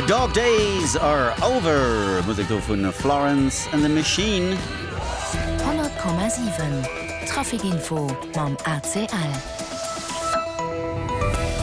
Dog Days Are Over, Musek do vun Florence and the Machine. 100,7 Traficinfo mam ACL.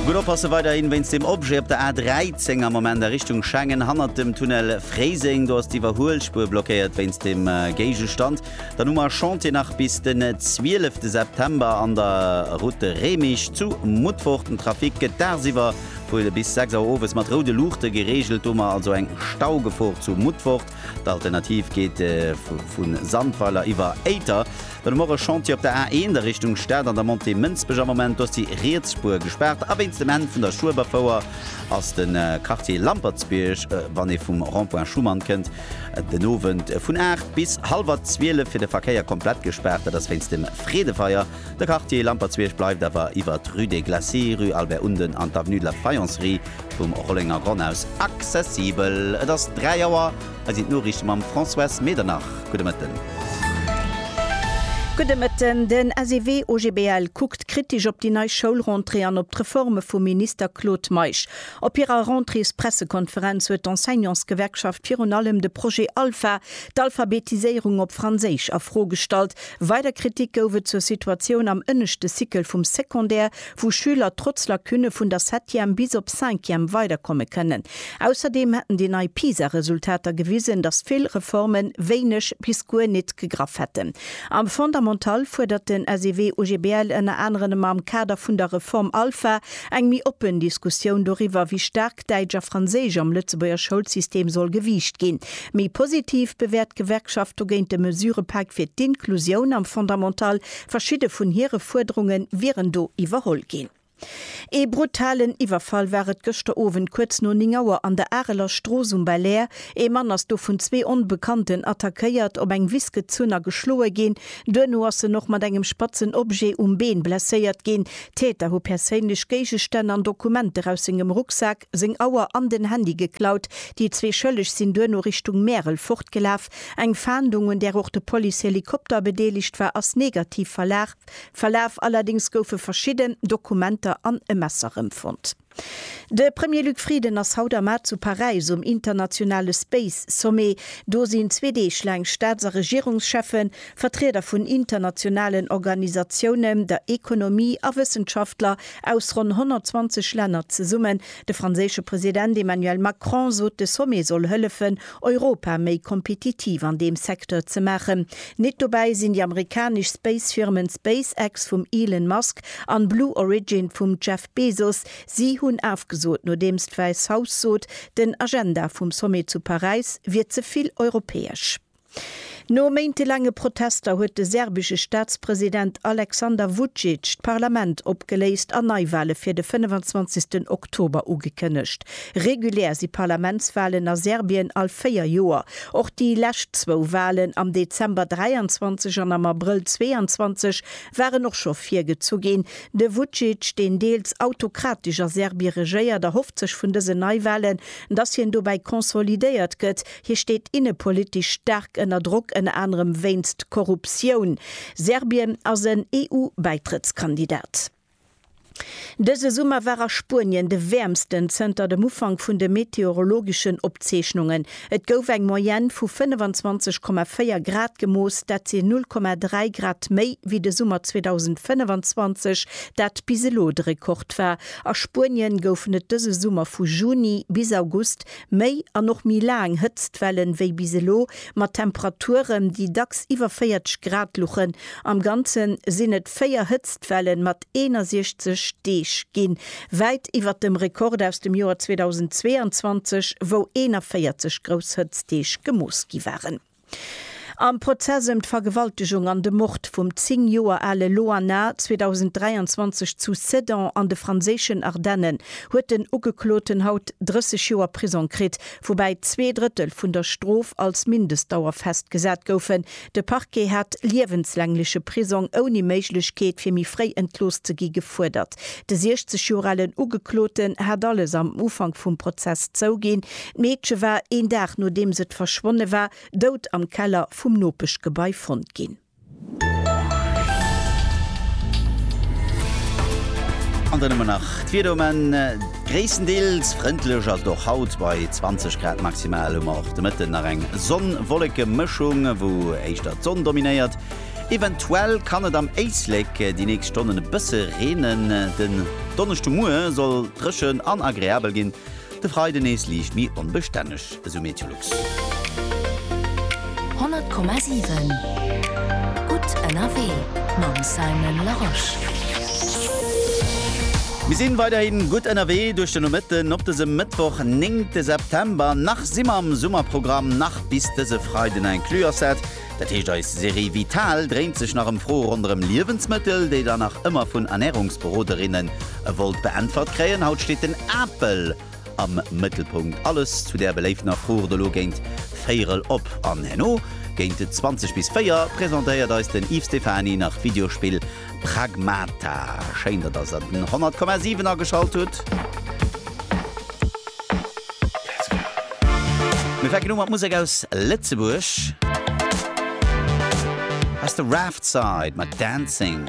Gutt oppasse weiderhin wéinst dem Objet op der A13 am Moment a Richtung Schengen hannert dem Tunnel Fréiseng. Do ass d'Iwwerhuelspuer blockéiert wéinst dem Géigestand. Dann hu mer Chantier nach bis den 12 September an der Route de Remich zu Mutfort. Den Trafic gëtt dagsiwwer Fuere bis 6 Auer owes mat roude Luuchte gereegelt, do mer also eng Staugefor zu Mutfort. D'Alternativ geet vu Sandweiler iwwer Éiter. Dann hu mer och e Chantier op der A1 a Richtung Stad an der Montée Mënsbech. Am Moment ass déi riets Spuer gespaart a wéinst dem Enn vun der Schueberfouer ass de Quartier Lampertsbierg, wann ee vum Rond-point Schuman kënnt, den Owend vun 8 bis hallwer 12 fir de Verkéier komplett gespaart. Dat ass wéinst dem Freedefeier. De Quartier Lampertsbierg bleift awer iwwer d'Rue des Glacis, Rue Albert Unden an d'Avenue de la Faïencerie vum Rollenger Gronn aus accessibel. Et ass 3 Auer, hei sinn d'Noriichte mam Françoise Medernach. Gudde Mëtten. Gudde Mëtten. Den SEW OGBL kuckt kritesch op déi nei Schoulrentrée an op d'Reforme vum Minister Claude Meisch. Op hirer Rentréespressekonferenz huet d'Enseignantsgewerkschaft virun allem de Projet Alpha, d'Alphabetiséierung op Franséisch, a Fro gestallt. Weider Kritik gouf et zur Situatioun am ënneschte Cycle vum Secondaire, wou Schüler trotz Lacune vun der Septième bis op Cinquième weiderkomme kënnen. Ausserdeem hätten déi nei PISA-Resultater gewisen, datt vill Reforme wéineg bis guer nit gegraff hätten. Am Fondamental fuerdert den SEW-UGBL ënner aneren am Kader vun der Reform Alpha eng méi oppen Diskussioun doriwwer, wéi staark, op Däitsch a Franséisch am Lëtzebuerger Schoulsystem soll gewiicht ginn. Méi positiv bewäert d'Gewerkschaft dogéint de Mesurëpak fir d'Inklusioun am Fondamental. Verschidde vun hire Fuerderunge wieren do iwwerholl ginn. Ee brutalen Iwwerfall war et gëschter Owend kuerz no 9 Auer an der Areler Strooss um Belair. Ee Mann ass do vun zwee Onbekannten attackéiert, op eng Wiss gezunn a geschloe ginn. Duerno ass en och mat engem spatzen Objet um Been blesséiert ginn. D'Täter hu perséinlech Géigestänn an Dokumenter aus sengem Rucksak, seng Auer an den Handy geklaut. Déi zwee Schëlleg sinn duerno Richtung Märel fortgelaf. Eng Fahndung, un där och de Policehelikopter bedeelegt war, ass negativ verlaf. Allerdéngs goufe verschidden Dokumenter an e Messer rëmfonnt. De Premier Luc Frieden ass haut am Mar zu Paräis um internationale Space Sommet. Do sinn zwee Deeg laang Staats a Regierungscheffen, Vertrieder vun internationalen Organisatiounen, der Ekonomie a Wëssenschaftler aus ronn 120 Länner zesummen. De franséische President Emmanuel Macron sot, de Sommet soll hëllefen, Europa méi kompetitiv an deem Secteur ze maachen. Nit dobäi sinn déi amerikanesch Space-Firmen SpaceX vum Elon Musk an Blue Origin vum Jeff Bezos, Si hunn afgesot, nodeems d'Wäiss Haus sot, den Agenda vum Sommet zu Paräis wier ze vill europäesch. No méintelaange Protester huet de serbesche Staatspresident Aleksander Vucic d'Parlament opgeléist an Neiwale fir de 25 Oktober ugekënnegt. Regulär si Parlamentswalen a Serbien all véier Joer. Och déi lescht zwou Walen am Dezember 23 an am Abrëll 22 waren och scho virgezu ginn. De Vucic, deen deels autokratesch a Serbie regéiert, erhofft sech vun dësen Neiwalen, datt hien dobäi konsolidéiert gëtt. Hie steet innepolitesch staark ënner Drock, ënner anerem wéinst Korruptioun. Serbien ass en EU-Bäitrëttskandidat. Dëse Summer war a Spuenien de wäermsten zënter dem Ufank vun de meteorologeschen Opzeechnungen. Et gouf eng Moyenne vu 25,4 Grad gemooss, dat sinn 0,3 Grad méi wéi de Summer 2025, dat bis elo de Rekord war. A Spuenien goufen et dëse Summer vu Juni bis August Méi an och méi laang Hëtztwellen wéi bis elo, mat Temperaturen, déi dacks iwwer 40 Grad luchen. Am Ganze sinn et véier Hëtztwellen mat 61 Deeg ginn, wäit iwwer dem Rekord aus dem Joer 2022, wou 41 grouss Hëtztdeeg gemooss gi waren. Am Prozess ëm d'Vergewaltegung an de Mord vum 10 Joer ale Loana 2023 zu Sedan an de franséischen Ardennen huet den Ugekloten haut 30 Joer Prisong kritt, woubäi zwee Drëttel vun der Strof als Mindestdauer festgesat goufen. De Parquet hat liewenslängleche Prisong ouni Méiglechkeet fir méi fréi entlooss ze gi gefuerdert. De 60 Joer alen Ugekloten hat alles am Ufank vum Prozess zouginn. D'Meedche war een Dag nodeems et verschwonne war, dout am Keller vum Nopeschgebai fonnt ginn. An dann hu mer nach d'Wieder um Enn, gréisstendeels frëndlech ass et och haut bei 20 Grad. Maximal hu mer och de Mëtten nach eng Sonn-Wolleke-Mëschung, wou éischter d'Sonn dominéiert. Eventuell kann et am Éislek déi nächst Stonnen e bësse reenen. Den Donneschdemoie soll dréchen an agreabel ginn, de Freide nees liicht méi onbestänneg, esou Meteolux. 100,7 gutt ënnerwee mam Simon Larosche. Mir sinn weiderhi gutt ënnerwee duerch de Nomëtten op dësem Mëttwoch, 9 September. Nach si mer am Summerprogramm, nach bis dëse Freiden inclus. Ass dat Dat heescht eis Serie Vital dréint sech nach ëm Froe ronderëm Liewensmëttel, déi Der nach ëmmer vun Ernärungsberoderinnen wollt beäntwert kréien. Haut steet den Apel am Mëttelpunkt. Alles zu där beléiftener Fro rtt elo géint véierel op. An herno géint 20 bis 4 presentéiert eis den Yves Stephany nach d'Videospill Pragmata, schéin datt der se den 100,7 ageschalt hutt. Mir fänken u mat Musek aus Lëtzebuerg. Hei ass de Raftside mat Dancing.